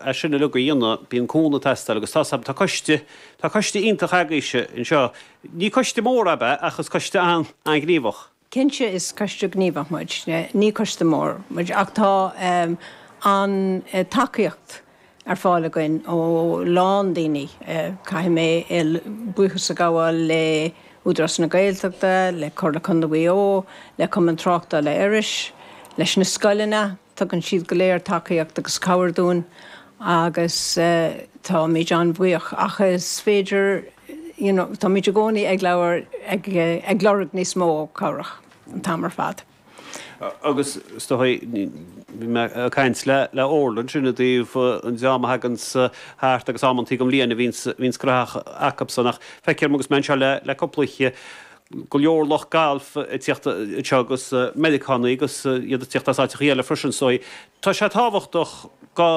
as sin uilig a dhéanamh bíonn cúnamh ag teastáil agus tá tá coiste tá coiste iontach agaibhse anseo ní coiste mór atá ann ach is coiste an-ghníomhach. Cinnte is coiste gníomhach muid ní coiste mór muid ach tá an tacaíocht ar fáil againn ó a lán daoine caithfidh mé buíochas a ghabháil le hÚdarás na Gaeltachta le Comhairle Condae Mhaigh Eo le Cumann Tráchtála Iorrais leis na scoileanna Tugann siad go léir tacaíocht agus cabhair dúinn agus táimid an-bhuíoch ach is féidir you know táimid i gcónaí ag labhair ag ag lorg níos mó cabhrach an t-am ar fad. Agus is dócha bhí mé ag caint le le Orla ansin i dtaobh an dream a thaganns thart agus amantaí i gcaitheamh na bliana bíonns cruth acubsan ach feicim agus mé anseo le le cúpla go leor lucht gailf ag tíocht anseo agus Meiriceánaigh agus iad ag tíocht as áiteachaí eile freisin so tá sé tábhachtach go,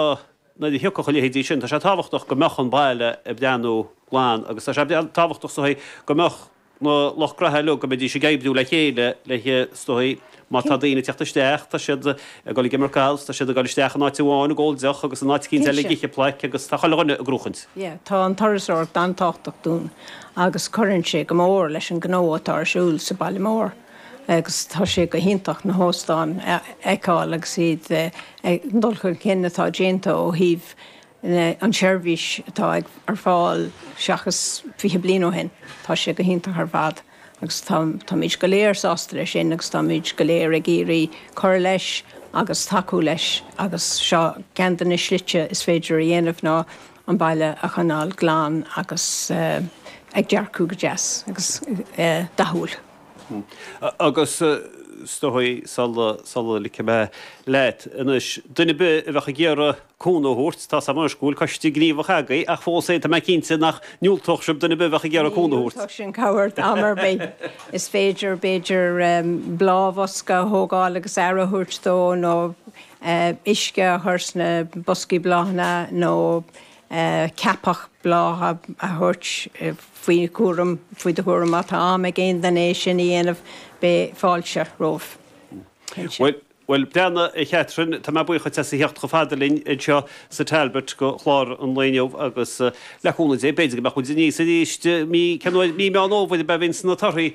nuair a thiocfadh a leithidí sin, tá sé tábhachtach go mbeadh an baile ag breathnú glan agus tá sé tábhachtach go mbeadh na lucht gnaithe uilig, go mbeidís ag oibriú le chéile le so Má tá daoine ag teacht isteach, tá siad ag dul ag imirt gailf, tá siad ag dul isteach in áit amháin ag ól deoch agus in áit eicínt eile ag ithe plaic agus tá chuile dhuine ag gnóthachtáil. Yeah, tá an turasóireacht an-tábhachtach dúinn agus cuireann sé go mór leis an gnó atá ar siúl sa bhaile mór agus tá sé go hiontach na hóstáin a fheiceáil agus iad ag, an dul chun cinn atá déanta ó thaobh an tseirbhís atá ag ar fáil seachas 20 bliain ó shin. Tá sé go hiontach ar fad agus tá táimid go léir sásta leis sin agus táimid go léir ag iarraidh cur leis agus tacú leis agus seo ceann de na slite is féidir a dhéanamh ná an baile a choinneáil glan agus ag dearcadh go deas agus dathúil. Hm. Agus is dóigh, sula ligfidh mé leat anois, duine ar bith a bheadh ag iarraidh cúnamh a thabhairt, tá's agam anois go bhfuil coiste gníomhach agaibh ach fós féin tá mé cinnte nach ndiúltódh sibh duine ar bith a bheadh ag iarraidh cúnamh a thabhairt. Ní dhiúltódh sinn cabhair am ar bith. Is féidir, b'fhéidir, bláthbhosca a thógáil agus aire a thabhairt dó nó uisce a chur sna boscaí bláthanna nó. ceapach bláthanna a thabhairt faoi chúram, faoi do chúram má tá am ag aon duine é sin a dhéanamh beidh fáilte roimhe. Bhuel, go breá, a Chatherine, tá mé buíoch duit as a theacht chomh fada linn anseo sa Talbot go chlár an lae inniu agus, le cúnamh Dé, b'fhéidir go mbeadh muid aníos arís mí, ceann uair, mí Meán Fhómhair a bhíonns na torthaí!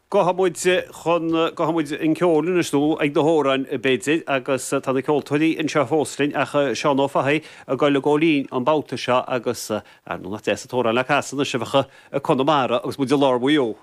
Gabhfaidh muid chun, gabhfaidh muid an ceol anois, nó ag na hamhráin b'fhéidir, agus tá na ceoltóirí anseo fós linn ach Seán Ó Fathaigh ag goil ag ceol linn an babhta seo agus, arú nach deas an t-amhrán le casadh anois, Seoighigh Chonamara agus muid i lár Mhaigh Eo!